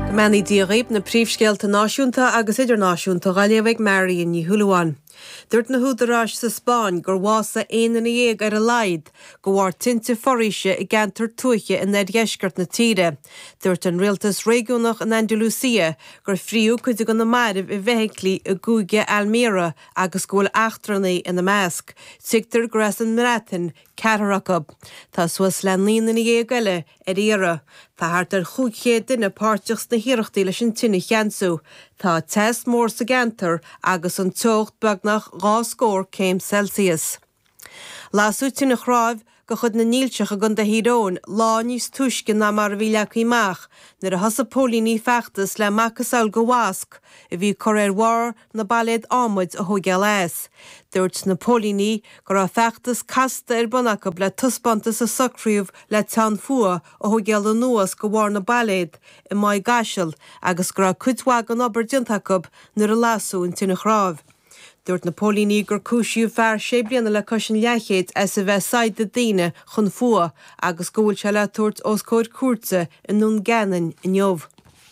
Go mbeannaí Dia dhaoib na príomhscéalta náisiúnta agus idirnáisiúnta dhá léamh ag Marion Ní Shúilleabháin. Dúirt na húdaráis sa Spáinn gur bhásaigh aon duine dhéag ar a laghad go bharr tinte foraoise i gceantar tuaithe in oirdheisceart na tíre. Dúirt an rialtas réigiúnach in Andalucia gur fríodh cuid de na mairbh i bhfeithiclí i gcúige Almería agus go bhfuil eachtrannaigh ina measc. Tuigtear gur as an mBreatain Ceathrar acu. Tá suas le naoi nduine dhéag eile ar iarraidh. Tá thart ar chúig chéad duine páirteach sna hiarrachtaí leis an tine a cheansú. Tá teas mór sa gceantar agus an teocht beagnach dhá scór céim Celsius. Lasadh tine chnáimh de chuid na ndílseach i gContae Thír Eoghain lá níos túisce ná mar a bhí leagtha amach nuair a thosaigh póilíní feachtas le macasamhail de mhosc a bhí curtha ar bharr na bpailéad adhmaid a thógáil as. Dúirt na póilíní go raibh feachtas casta ar bun acu le taispeántas a socraíodh le teann fuath a thógáil anuas go bharr na bpailéad i Maigh gCaisil agus go raibh cuid mhaith den obair déanta acu nuair a lasadh an tine chnáimh. Dúirt na póilíní gur cúisíodh fear sé bliana le cois an leathchéid as a bheith ag saighdeadh daoine chun fuath agus go bhfuil sé le tabhairt os comhair cúirte i nDún Geanainn inniu.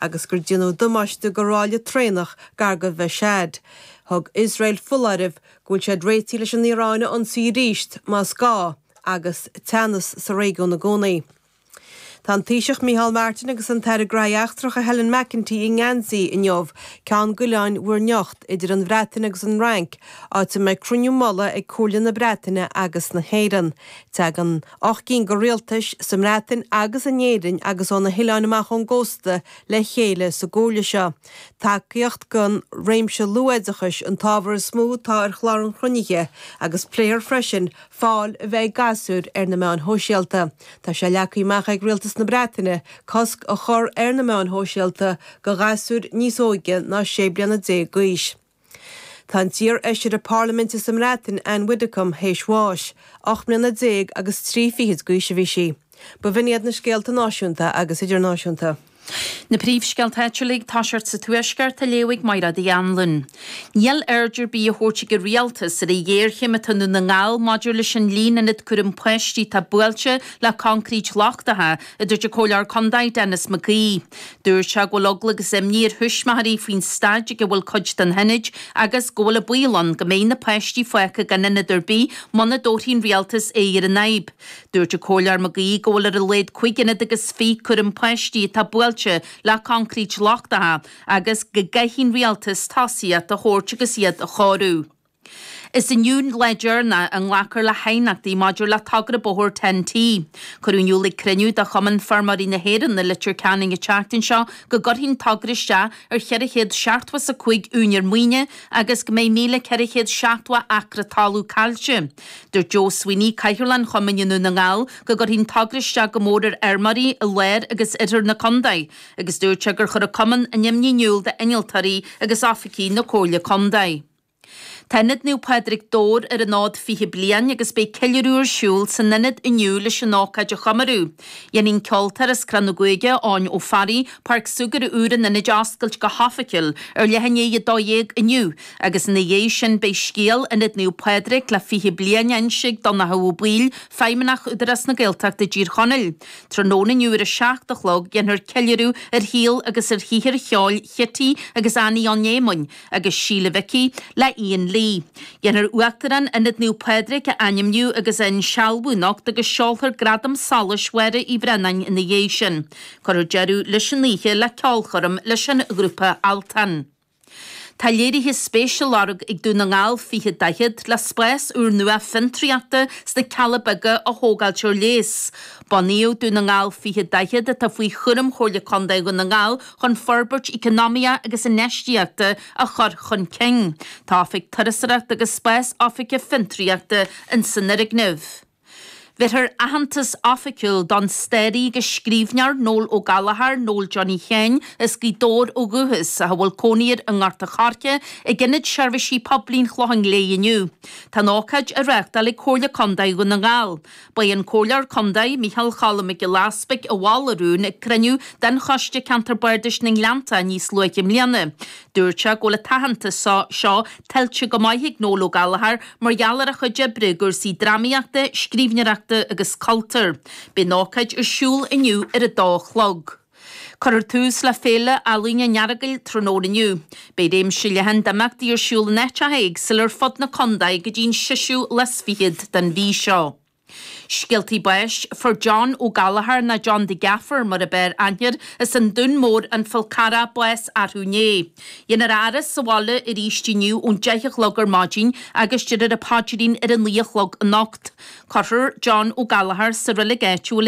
agus gur déanadh damáiste go ráille traenach gar go Mhashhad. Thug Iosrael foláireamh go bhfuil siad réitithe leis an Iaráin a ionsaí arís más gá agus teannas sa réigiún i gcónaí. Tá an Taoiseach Micheál Martin agus an tAire Graithí Eachtracha Helen McEntee i nGeansaí inniu ceann d'Oileáin Mhuir nIocht idir an Bhreatain agus an Fhrainc, áit a mbeidh cruinniú mullaigh ag Comhairle na Breataine agus na hÉireann. Teagann ocht gcinn go rialtais, sa mBreatain agus in Éirinn agus ó na hoileáin amach ón gcósta, le chéile sa gComhairle seo. Tacaíocht don réimse luathoideachais an t-ábhar is mó atá ar chlár an chruinnithe agus pléifear freisin fáil a bheith ag gasúir ar na meáin shóisialta. Tá sé leagtha amach ag Rialtas na Breataine cosc a chur ar na meáin shóisialta do ghasúir níos óige ná sé bliana déag d'aois. Tá an t-iarfheisire Parlaiminte sa mBreatain, Ann Widdecombe, théis bháis. Ocht mbliana déag agus trí fichid d'aois a bhí sí. Ba in iad na scéalta náisiúnta agus idirnáisiúnta. Na príomhscéalta áitiúla, ag tosacht sa Tuaisceart, á léamh ag Mairéad Uí Annluain. Níl aird ar bith á thabhairt ag an Rialtas ar an ghéarchéim atá i nDún na nGall maidir leis an líon ionad cúram páistí atá buailte le coincreít lochtacha, a dúirt an Comhairleoir Condae Denis McGee. Dúirt sé go bhfuil eagla agus imní ar thuismitheoirí faoin staid ag a bhfuil cuid de na hionaid agus go bhfuil an baol ann go mbeidh na páistí fágtha gan ionad ar bith muna dtabharfaidh an Rialtas aghaidh ar an fhadhb. Dúirt an Comhairleoir Mag Aoidh go bhfuil ar a laghad cúig ionad agus fiche cúram páistí atá buailte le concrete lochtacha agus go gcaithfidh an Rialtas tosaíocht a thabhairt agus iad a chóiriú. Is inniu lá deireanach a nglacfar le haighneachtaí maidir le togra bóthair Ten T. Cuireadh in iúl ag cruinniú de Chumann Feirmeoirí na hÉireann i Leitir Ceanainn an tseachtain seo go gcuirfidh an togra isteach ar cheithre chéad seachtó is a cúig úinéir maoine agus go mbeidh míle ceithre chéad seachtó acra talún caillte. Dúirt Joe Sweeney, Cathaoirleach an Chumainn i nDún na nGall, go gcuirfidh an togra isteach go mór ar fheirmeoirí i lár agus oirthear na condae agus dúirt sé gur chuir an Cumann a n-imní in iúl d'innealtóirí agus oifigigh na Comhairle Condae. Tá Ionad Naomh Pádraig Dobhair ar an fhód 20 bliain agus beidh ceiliúradh ar siúl san Ionad inniu leis an ócáid a chomóradh. Dhéanfaidh an ceoltóir as Cró na gCuigeadh, Eoin Ó Fearraigh, Páirc Súgartha úr an Ionaid a oscailt go hoifigiúil ar leath i ndiaidh a 12 inniu agus ina dhiaidh sin beidh scéal Ionad Naomh Pádraig le 20 bliain á inse ag Donncha Ó Baoill, Feidhmeannach Údarás na Gaeltachta i dTír Chonaill. Tráthnóna inniu ar a 7 a chlog, dhéanfar ceiliúradh ar shaol agus ar shaothar cheoil Chití agus Annie Eoghain Éamoinn, agus Síle Mhicí le Ian Lee. Dhéanfar Uachtarán Ionad Naomh Pádraig a ainmniú agus a insealbhú anocht agus seolfar Gradam Solais Mháire Uí Bhraonáin ina dhiaidh sin. Cuirfear deireadh leis an oíche le ceolchoirm leis an ghrúpa Altan. Tá léirithe spéise á lorg ag Dún na nGall 20 40 le spás úrnua fiontraíochta sna Cealla Beaga a thógáilt ar léas. Bunaíodh Dún na nGall 20 40, atá faoi chúram Chomhairle Contae Dhún na nGall, chun forbairt eacnamaíoch agus infheistíochta a chur chun cinn. Tá Oifig Turasóireachta agus Spás Oifige Fiontraíochta in san fhoirgneamh. Bhéarfar aitheantas oifigiúil don stairí agus scríbhneoir Noel Ó Gallchóir, Noel Johnny Sheáin, as Gaoth Dobhair ó dhúchas, ach a bhfuil cónaí air i nGort a Choirce, ag Ionad Seirbhísí Poiblí an Chlocháin Léith inniu. Tá an ócáid á reáchtáil ag Comhairle Contae Dhún na nGall. B'é an Comhairleoir Contae, Micheál Cholm Mac Giolla Easbuig a mhol an rún ag cruinniú de Choiste Ceantar Bardais na nGleanntach níos luaithe i mbliana. Dúirt sé go bhfuil an t-aitheantas seo tuillte go maith ag Noel Ó Gallchóir mar gheall ar a chuid oibre i gcúrsaí drámaíochta, scríbhneoireachta agus cultúir. Beidh an ócáid ar siúl inniu ar a dó a chlog. Cuirfear tús le Féile Ealaíne an Earagail tráthnóna inniu. Beidh réimse leathan d'imeachtaí ar siúl in áiteacha éagsúla ar fud na condae go dtí'n seisiú lá is fichead den mhí seo. Scéaltaí Báis, Fuair John Ó Gallchóir, ná John the Gaffer mar ab fhearr aithne air, as an Dún Mór, An Fál Carrach, bás arú inné. Dhéanfar a fhaire sa bhaile aríst inniu ón deich a chlog ar maidin agus deirfear an paidrín ar a naoi a chlog anocht. Cuirfear John Ó Gallchóir sa reilig áitiúil i.